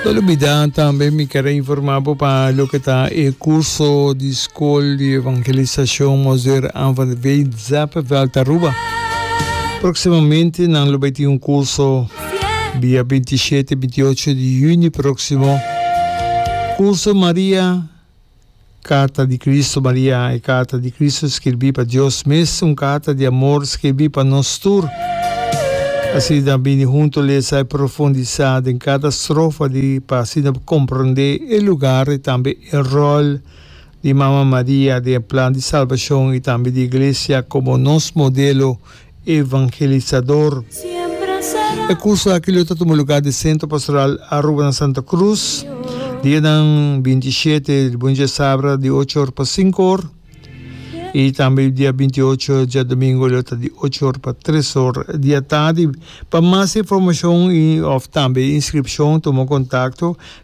No lubida tambe mi kere informa bo pa loke ta e kurso di skol di evangelisashon Mozer Aan van de Veen Zeppenveld Aruba. Proksimamente nan lo bai tin un kurso dia binti shete, binti ocho di yuni proksimo. Kurso Maria. Carta di Cristo Maria, e carta di Cristo skirbi pa Dios mes, un carta di amor skirbi pa nos tur. Asina a bini hunto lesa i profundisa den cada strofa di pa asina por comprende e lugar i tambe e rol di Mama Maria den e plan di salbacion i tambe di Iglesia como nos modelo evangelisador. E kurso aki lo ta tuma lugá di Sentro Pastoral Aruba na Santa Krus, dianan binti shete di bunchi a sabra di ocho or pa sinku or, i tambe dia binti ocho djadumingu e lo ta di ocho or pa tres or di atadi. Pa mas informashon i òf tambe inskripshon tuma kontakto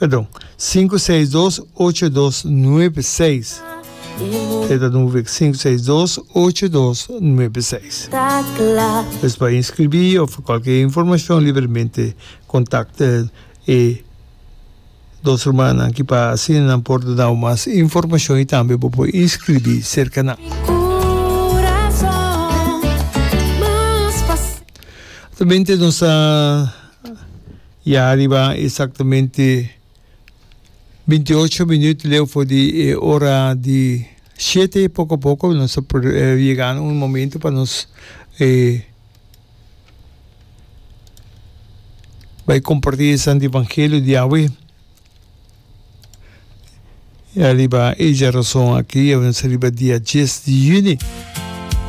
Perdon, sinku seis dos ocho dos nuebe seis. E ta dun wik, sinku seis dos ocho dos nuebe seis. Pues pa inskribí òf kualke informashon libremente kontakta e dos rumannan ki pa asina nan por ta nau mas informashon i tambe bo por inskribí serka nan. Tambe nos ta. I a riba exactamente binti ocho minüt leu for di e ora di shete, poco poco nos ta yegando un momento pa nos bai comparti e santo evangelio di Yahweh. I a riba e dja rason aki nos ta riba dia dies di yüni.